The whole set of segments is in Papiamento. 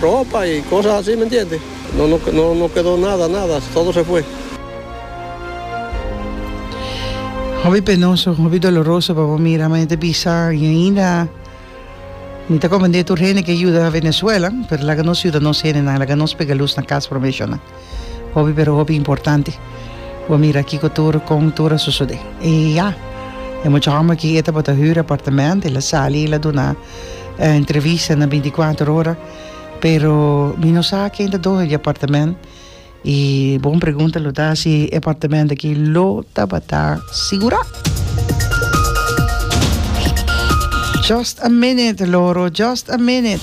Ropa y cosas asi, mi entiende. No, no, no, no kedo nada, nada, todo se fue. Hopi penoso, hopi doloroso pa bo mira, m'a ta bisa y ainda mi ta comprende tur hende ke yuda Venezuela, pero laga nos yuda nos hendenan, laga nos pega luz na cas prome shon nan. Hopi pero hopi importante bo mira kiko tur, kon tur a sosode. Y ya, e mucha homber aki e tabata hür apartamento, el a sali, el a duna. eh, entrevista na 24 ora pero mi no sa ken ta dohe di apartament y bon pregunta lo ta si apartament aquí lo tabata segura just a minute loro just a minute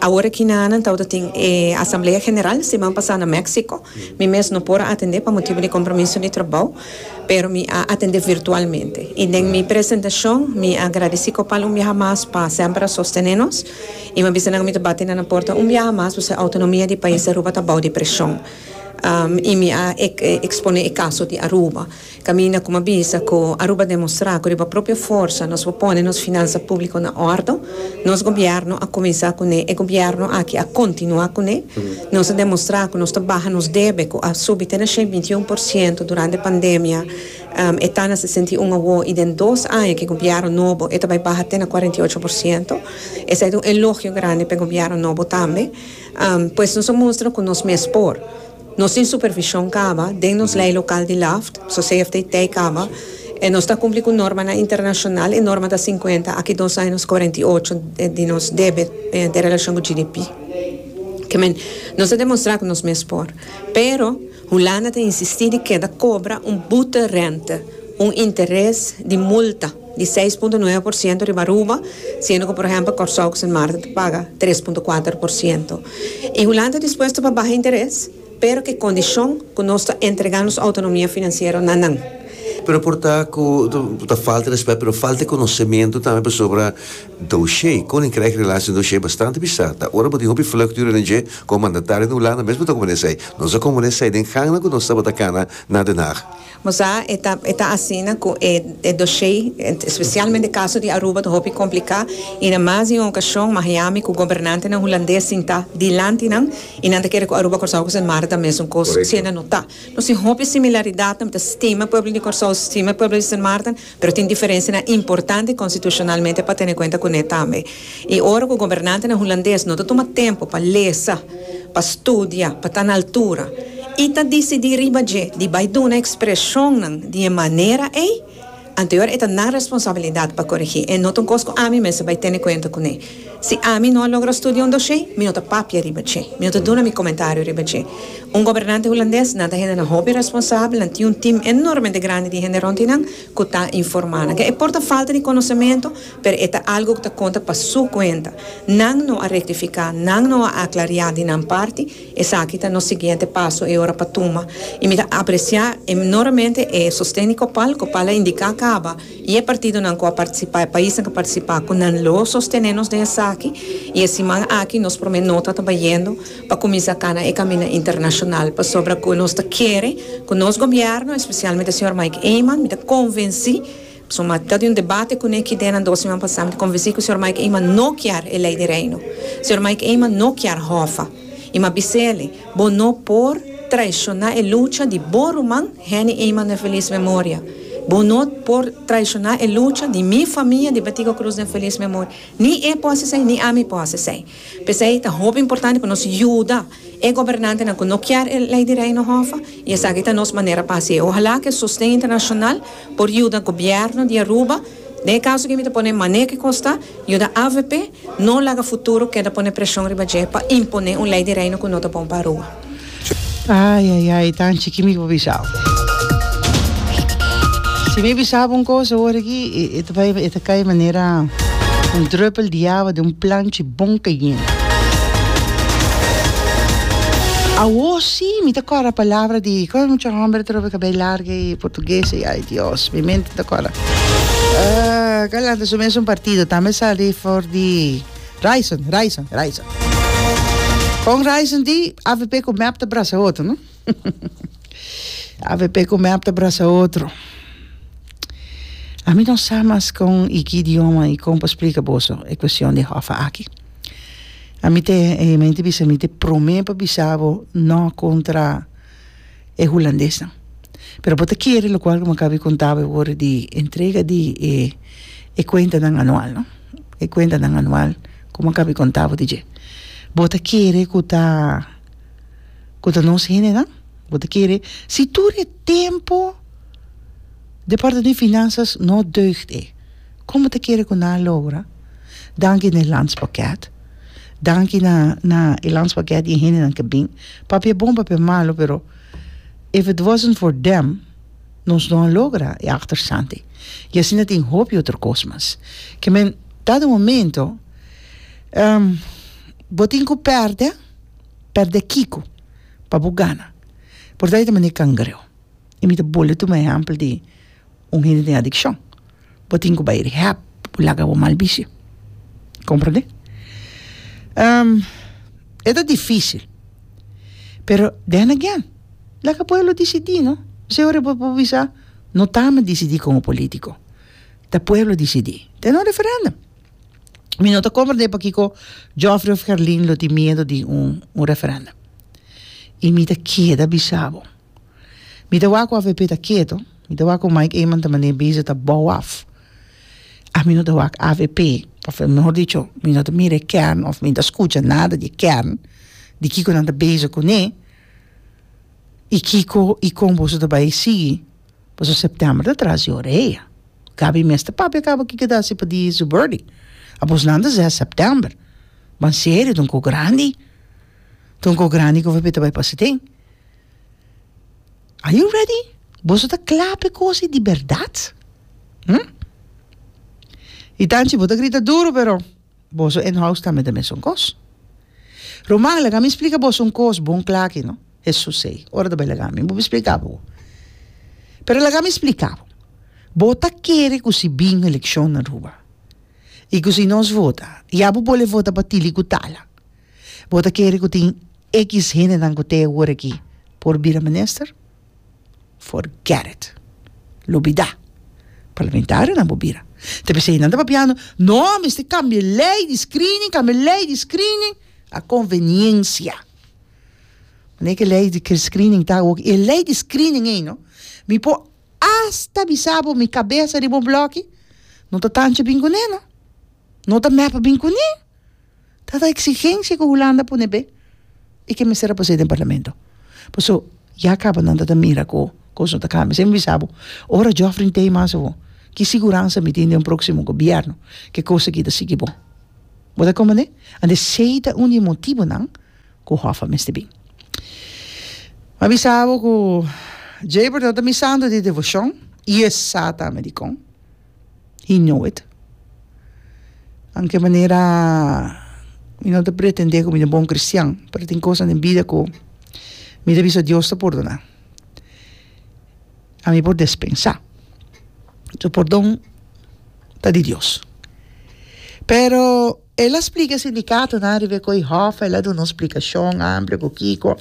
Awor aki na nan tabata tin e asamblea general siman pasa na Mexico. Mi mes no por a atende pa motibu di compromiso di trabou, pero mi a atende virtualmente. Y den mi presentacion mi a agradeci Copal un biaha mas pa semper a sostene nos y mi a bisa nan mi ta bati na nan porta un biaha mas pasobra e autonomia di pais di Aruba ta bou di presion. Y mi a expone e caso di Aruba. Caminda cu mi a bisa cu Aruba a demostra cu riba propio forsa nos por pone nos finansa publico na ordo, nos gobierno a cuminsa cu ne, e gobierno aki a continua cu ne. Nos a demostra cu nos ta baha nos debe cu a subi te na shei binti un por ciento durante pandemia, e ta na sesenta i un awo y den dos aña cu gobierno nobo e ta bay baha te na cuarenta i ocho por ciento. Esey ta un elogio grandi pa e gobierno nobo tambe. Pues nos a mustra cu nos mes por. Nos tin supervision caba den nos ley local di Laft, so CFTT caba e nos ta cumpli cu normanan internacional, e norma ta cincuenta, aki dos aña nos cuarenta y ocho di nos debet den relacion cu GDP. Kemen, nos ta demostra cu nos mes por. Pero, Hulanda ta insisti di keda cobra un boete rente, un interes di multa. di seis punto nuebe por siento riba Aruba, siendo cu por ehempel Corsou cu Sint Maarten ta paga tres punto kuater por siento. E Hulanda ta dispuesto pa baha interes, pero cu e condicion cu nos ta entrega nos autonomia financiero na nan. Pero por ta cu ta falta respet, pero falta e conocemento tambe pasobra doshé, Koninkrijk Relaties en Doshé, bastante bizar ta. Ora bo tin hopi vlucht di ONG como mandatario na Hulanda mes bo ta como nesei. Nos a como nesei den gangnan cu nos tabata cana na Den Haag. Mosa e ta e ta asina cu e e doshé, especialmente e caso di Aruba ta hopi complicá y na mas di un ocasion Mahiami cu gobernantenan Hulandes sintá dilanti nan y nan ta kere cu Aruba, Corsou cu Sint Maarten ta mesun cos, siendo no ta. Nos tin hopi similaridadnan, mi ta stima pueblo di Corsou, stima pueblo di Sint Maarten. Pero tin diferensianan importante konstitushonalmente pa tene kuenta kuné tambe. I ora ku gobernantenan hulandes no ta tuma tempu pa lesa, pa studia, pa ta na altura i ta disidí riba dje di bai duna ekspreshonnan di e manera ei, anteor e ta nan responsabilidat pa korigí. E no ta un kos ku ami mester bai tene kuenta kuné. Si ami no a logra studia un dosé, mi no ta papia riba dje. Mi no ta duna mi komentario riba dje. Un gobernante hulandes, nan ta hendenan hopi responsabel, nan tin un tim enormemente grandi di hende rond di nan ku ta informá nan. Ke e por ta falta di konosementu, pero e ta algu ku ta konta pa su kuenta. Nan no a rektifiká, nan no a aklariá di nan parti, esaki ta nos siguiente paso e ora pa tuma. I mi ta apresiá enormemente e sosten di Copal. Copal a indiká caba. I e partidonan ku a partisipá, e paisnan ku a partisipá ku nan lo sostené nos den esaki. I e siman aki nos promé nota ta bayendo pa kuminsá kana e kaminda internashonal pasobra ku nos ta kere ku nos gobièrnu, espesialmente señor Mike Eman, mi ta konvensí, pasobra mi a ta di un debate kuné ki día nan dos siman pasá, mi ta konvensí ku señor Mike Eman no kier e Lei di Reino. Señor Mike Eman no kier Hòfa. I mi a bis'é alí. Bo no por traishoná e lucha di bo ruman Henny Eman den felis memoria. Bo no por traishoná e lucha di mi famia di Betico Cruz den felis memoria. Ni e por hasi esei, ni ami por hasi esei. P'esei ta hopi importante ku nos yuda e gobernantenan ku no kier e Lei di Reino Hòffa, i esaki ta nos manera pa hasi. Ohalá ku e sosten internashonal Por yuda Gobierno di Aruba, den e caso aki mi ta pone mane cu Costa, yuda avp no laga futuro keda pone presion riba dje pa impone un ley di Reino cu no ta bon pa Aruba. Ai ai ai, Tanchi, ki mi por bisa bo? Si mi bisa bo un cos awor aki, e ta bay, e ta cay manera un druppel di awa den un planchi bon cayente. Awor si, mi ta cora palabra di, con e mucha homber atrobe cabey largo y. Portuguese ai Dios mi mente ta cola galante su mesun partido tambe sali for di Raison Raison Raison con Raison di avp cu mep ta brasa otro no avp cu mep ta brasa otro ami no sa mas con y ki idioma y con pa splica boso e cuestion di Hoffa aki ami te en mi mente bisa mi te prome pa bisa bo no contra e hulandesnan. Pero bo ta kere lokual ku Makabi konta bo e worde di entrega di e e kuentanan anual, no? E kuentanan anual ku Makabi konta bo di dje. Bo ta kere ku ta ku ta nos hendenan? Bo ta kere si tur e tempu Departamento di Finanzas no deugt e, kon bo ta kere ku nan a logra danki Nederlands pakèt? Danki na na e landspaket y e hendenan ke bin. Papia e bon, papia e malo, pero if it wasn't for them nos no a logra e achterstandi. Y asina tin hoop di otro kos mas. Ke men ta den un momento bo tin ku pèrdè, pèrdè kiko pa bo gana? Por ta e ta manera kangreo. y mi ta bolbe tuma ehempel di un hende tin adiccion bo tin cu bay rehab bo laga bo mal bishi comprende e ta dificil pero then again laga pueblo dicidi no ose hora bo por bisa no ta mi dicidi como politico ta pueblo dicidi den un referendum mi no ta comprende pakico Joffrey of Herlin lo tin miedo di un referendum y mi ta keda bisa bo. Mi ta wak of Epe ta keto. Mi ta wak ku Mike Eman ta mane bizi ta bou af. Ami no ta wak af Epe, of mehor dicho, mi no ta mira e kern of mi no ta skucha nada di e kern di kiko nan ta bezi kuné i kiko i kon boso ta bai sigui. Paso Sèptèmber ta tras di orea. Gabi mes ta papia kaba kiko ta hasi pa di Zuberdi. Abosnan ta zes Sèptèmber. Ban serio, ta un kos grandi. Ta un kos grandi ku of Epe ta bai pasa den. Are you ready? Boso ta kla pa e kosi di berdad? Hm? I tanchi bo ta grita duru, pero boso inhouse tambe ta mesun kos. Ruman, laga mi splika boso un kos bon kla aki, no? Hesus sei, ora ta bai laga mi, bo por splika bo. Pero laga mi splika bo. Bo ta kere ku si bin elekshon Aruba i ku si nos vota, ya bo bole vota pa Tili ku Tala? Bo ta kere ku tin ekis hendenan ku te hour aki por bira minister? Forget it. Lo bida. Parlamentarionan bo bira. Te p'esei nan ta papiando, no, mester kambia e lei di screening, kambia e lei di screening. A konveniencia. Manera ku e lei di screening ta awor, e lei di screening ei no, mi por asta bisa bo mi kabesa riba un blòki, no ta tanchi bin kuné no. No ta mèp bin kuné. ta ta exigencia cu Hulanda a pone bey y que mester a pasá den parlamento pasobra ya caba nan ta ta mira cu cosnan ta cambia siempre mi bisa bo ora Jofrin tey mas awo ki siguransa mi tin den un proximo gobierno que cosa aki ta sigui bon bo ta comprenné anto esey ta un di e motibonan cu Hoffa mester bin mi a bisa bo cu Jay Bordon ta mi Santo di devocion y e sa tambe dicon. He know it. Anke manera mi no ta pretende ku mi ta bon kristian, pero tin kos den bida ku mi ta bisa Dios ta pordoná. A mi por despensá. So pordon ta di Dios. Pero el a splika e sindikatonan riba e koi hòf, el a duna un splikashon amplia ku kiko.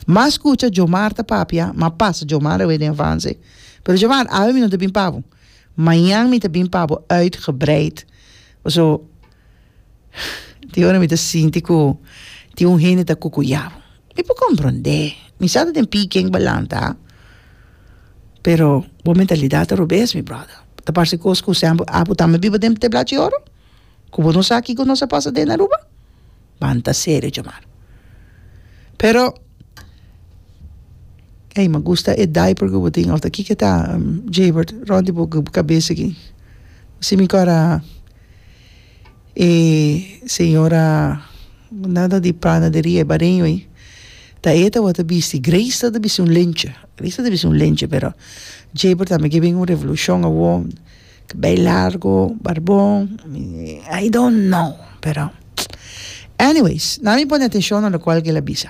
Mas kucha Djomar ta papia, mas pasa Djomar awe den avanse, pero Djomar, awe mi no ta bin pa bo. Mañan mi ta bin pa bo uitgebreid. Paso, tin ora mi ta sinti ku tin un hende ta kukuyá bo. Mi por komprondé. Mi sa ta den p'i ken ku bo a lanta. Pero bo mentalidat ta robes, mi bròda. Ta parse kos ku sèmpel, apu tambe biba den teblachi oro? ku bo no sa kiko nos a pasa den Aruba? Banta serio djamar. Pero ey mi a gusta e diaper ku bo tin of ta kiko ta Jaybert rond di bo kabes aki. Asi mi ku a raha e señora una di panaderia e bareño ey ta e ta wata bisti Grace ta ta bisti un lencha Grace ta ta bisti un lencha pero Jaybert ta mi ke bin un revolucion awor Kbel largo, barbon, I don't know, pero anyways, nan mi pone atenshon na lokual ke el a bisa.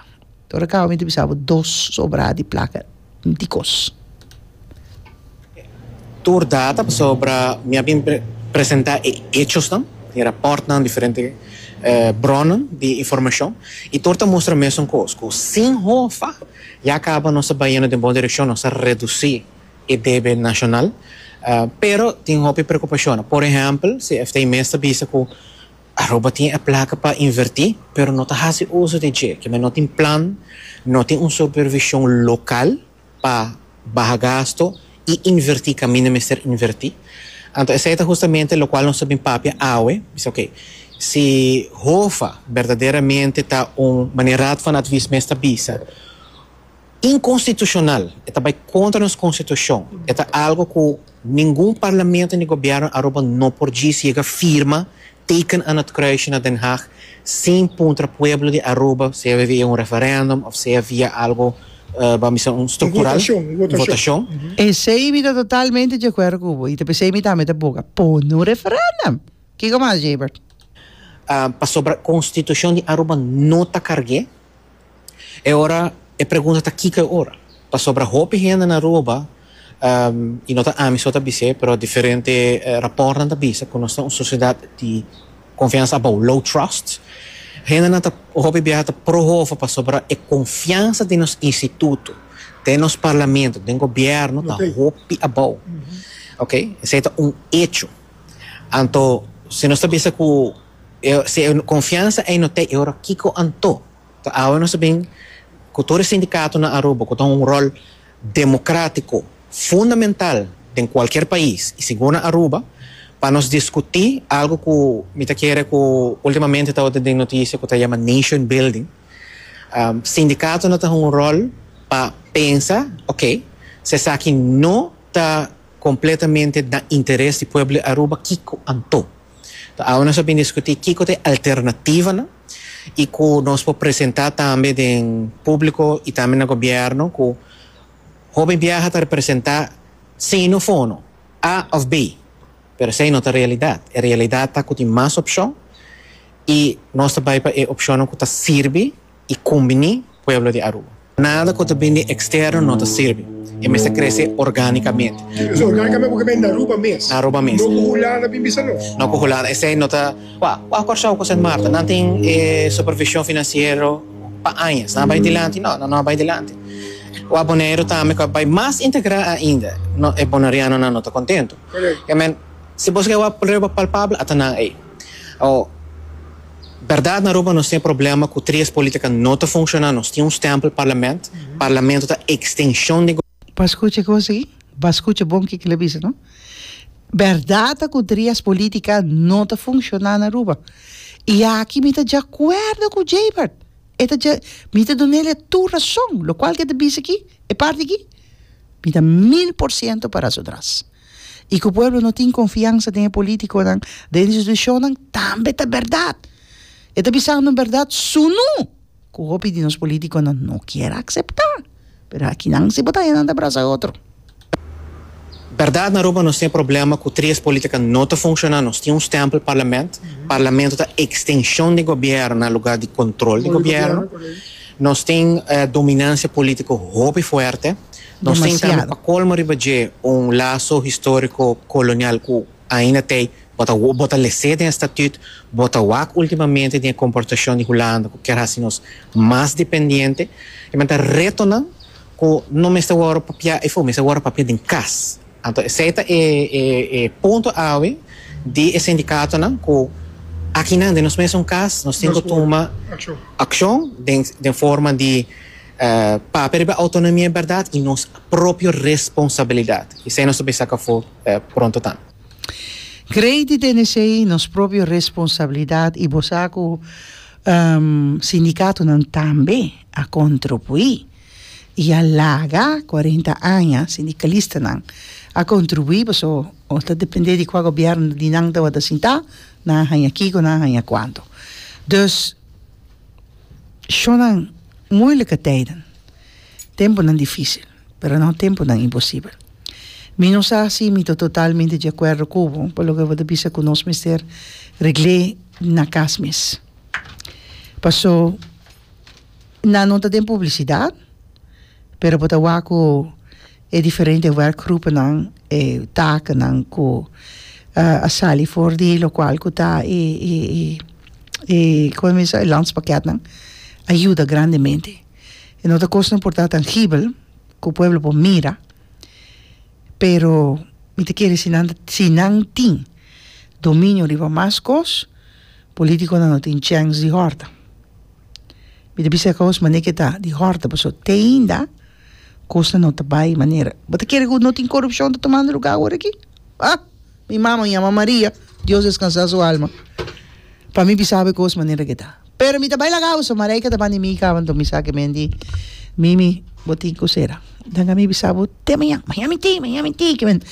Ora kaba mi ta bisa bo dos sobrada di plaka dikos. Tur data pasobra mi a bin presenta e echosnan, e rapòrtnan, diferente brònan di informashon, i tur ta mustra mesun kos, ku sin hofa ya kaba nos ta bai yendo den bon direkshon, nos ta redusí. e debe nashonal, pero tin hopi preokupashonnan. Por ehèmpel, CFT mes ta bisa ku Aruba tin e plaka pa invertí, pero no ta hasi uso di dje, kibé no tin plan, no tin un supervishon lokal pa baha gasto i invertí kaminda mester invertí. Anto esei ta hustamente lokual nos ta bin papia awe, bisa oke, si HOFA berdaderamente ta un, manera Raad van Advies mes ta bisa, Inconstitucional, e ta bay contra nos constitucion, e ta algo cu ningun parlamento ni gobierno Aruba no por djis yega firma, teken aan het kruisje na Den Haag, sin puntra pueblo di Aruba, sea via un referendum of sea via algo bam bisa un structural, un votacion. Esey mi ta totalmente dje cuerdo cu bo y ta pa esey mi tambe ta boga pone un referendum. Kico mas, Jebert? Pasobra constitucion di Aruba no ta carge. E ora e pregunta ta kiko e ora? Pasobra hopi hende na Aruba, y no ta ami so ta bis'e, pero diferente rapòrtnan ta bisa ku nos ta un sosiedat di konfiansa abou, low trust. Hendenan ta, hopi biaha ta pro hofu pasobra e konfiansa den nos instituto, den nos parlamento, den gobièrnu ta hopi abou. Oke, esei ta un echo. Anto si nos ta bisa ku si e konfiansa ei no t'ei e ora kiko anto? Ta awe nos ta bin cu tur e sindicato na Aruba cu ta un rol democratico fundamental den cualkier pais y sigur na Aruba pa nos discuti algo cu mi ta kere cu ultimamente ta ota den noticia cu ta yama nation building. Sindicato na ta hunga un rol pa pensa ok si esaki no ta completamente na interes di pueblo di Aruba kico anto? Ta awe nos ta bin discuti kico ta e alternativanan. y cu nos por presenta tambe den publico y tambe na gobierno cu hopi biaha ta representa sino fono, A of B, pero esey no ta realidad. E realidad ta cu tin mas opcion y nos ta bay pa e opcionnan cu ta sirbi y cumbini pueblo di Aruba. Nada cu ta bindi externo no ta sirbi. E mester crece orgánicamente. Crece orgánicamente cu ta bindi na Aruba mes. Na Aruba mes. No cu Hulanda bin bisa nos. No cu Hulanda. Esey no ta. Cua? Cua Corsow cu Sint Maarten? Nan tin e supervision financiero pa añas. Nan a bay dilanti? No, nan no a bay dilanti. Cua Boneiru tambe cu a bay mas integra ainda? No, e Bonerianonan no ta contento. Correcto. Kemen, si bo sigue a wak prueba palpabel, a ta nan ey. Awor, berdad na Aruba nos tin e problema cu tres politica no ta funciona, nos tin un stempel parlament, parlamento ta extension di. Pa scucha cos aki, pa scucha bon kico el a bisa no. Berdad ta cu tres politica no ta funciona na Aruba. Y aki mi ta djacuerdo cu Jbert. E ta dja, mi ta duna el e tur rason, locual cu e ta bisa aki, e parti aki, mi ta mil por ciento para su dras. i ku pueblo no tin konfiansa den e polítikonan, den e institushonnan, tambe ta bèrdat. E ta bisando bèrdat sunú ku hopi di nos polítikonan no kier akseptá. Pero akinan si bo ta haña nan ta brasa e otro. Bèrdat, na Aruba nos tin e problema ku tres polítika no ta funshona. Nos tin un stèmpel parlament. Parlamento ta ekstenshon di gobièrnu na lugar di kontrol di gobièrnu. Nos tin dominansia polítiko hopi fuerte. Nos tin tambe pa colmo riba dje un laso historico colonial cu ainda t'e ey bo ta bo ta lese den e statut, bo ta wak ultimamente den e comportacion di Hulanda cu kier haci nos mas dependiente. E manda retonan cu no mester worde papia efo, mester worde papia den cas. Anto esey ta e e e punto awe di e sindicatonan cu akinan den nos mesun cas nos tin cu tuma accion den den forma di, Papia riba autonomia e berdad y nos propio responsabilidad. Esey nos ta bisa aca afo pronto tambe. Grey di Denesey, nos propio responsabilidad y bo sa cu sindicatonan tambe a contrubui y a laga cuarenta aña sindicalistanan a contrubui paso ta depende di cua gobierno di nan tabata sinta nan a haya kico nan a haya cuanto. Dus shonnan muileke tijden, temponan dificil, pero no temponan imposibel. Mi no sa si mi ta totalmente di acuerdo cu bo, pa loke bo ta bisa cu nos mester regle na cas mes. Paso nan no ta den publicidad, pero bo ta wak cu. E diferente werkgroepennan, e takennan ku a sali for di lokual ku ta e e kome men se e landspaketnan a yuda grandemente. E no ta kosnan por ta tangibel ku pueblo por mira pero mi ta kere si nan ta si nan tin dominio riba mas kos politikonan no tin chèns di hòrta. Mi ta bisa e kos manera ke ta di hòrta pasobra te ainda Cosa no ta bay manera. Bo ta kere cu no tin corupcion ta tomando lugar awor aki? Ah! Mi mama yama Maria, Dios descansa su alma, pa mi bisa awe cos manera aki ta. Pero mi ta bay laga awor, Mareike ta ban di mi caba, enton mi sa kemen di Mimi, bo tin cu cera. Danga mi bisa bo te maña, maña mi te, maña mi te kemen.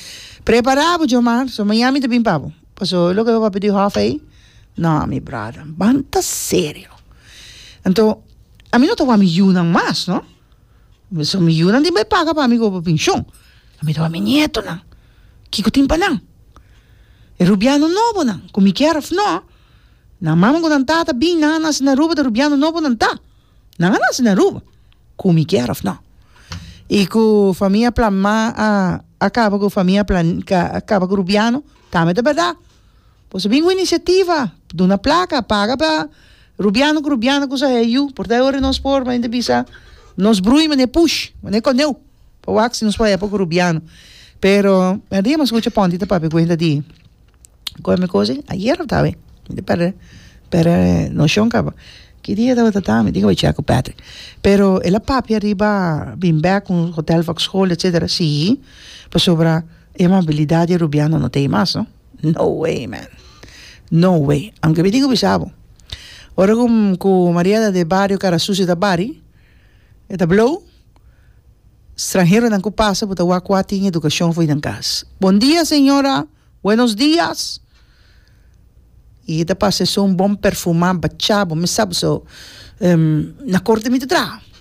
Prepara bo Djomar, so maña mi ta bin pa bo. Pasobra loke bo a pidi hof ey, no mi brother, banta serio. Enton, ami no ta wak mi yunan mas, no. Mesun mi yunan tin bai paga pa mi ku obo penshon. A mi ta wak mi nietonan. Kiko tin pa nan? E rubiano nobonan ku mi kier òf nò, nan mama ku nan tata bin, nan a nase na Aruba ta rubiano nobo nan ta. Nan a nase na Aruba, ku mi kier òf nò. I ku famia Planmá a kaba ku famia Plan, a kaba ku rubiano, tambe ta bèrdat. Por ta bin un iniciativa pa duna placa paga pa rubiano cu rubiana cu sa hei yu por ta ora nos por manda bisa nos brui mane push mane coneu pa wak si nos por hepo cu rubiano pero a dia mas scucha ponti ta papia cuenta di con mi cosa ayer a tabata mi ta perde perde nocion caba ki dia tabata ta mi dica bay check cu Patrick pero el a papia riba bin bek cu hotel foxhol etcetera si pasobra e amabilidad di e rubiano no ta ay mas no. No way man no way aunke mi tin ku bisa bo ora ku ku Maria ta den bario kara sucio ta bari e ta blow stranheronan ku pasa bo ta wak kua tin edukashon for di nan kas bon dia señora buenos dias i e ta pasa esun bon perfuma bacha bo mi sa bo so na korte mi ta traha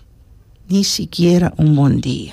ni sikiera un bon dia.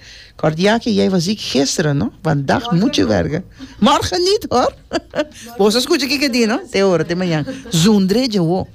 Cordia ke jij was ziek gisteren no? Vandaag moet je werken. Morgen niet hoor! Boso scucha kiko di no? Te ora te mañan. Zundre dje wo!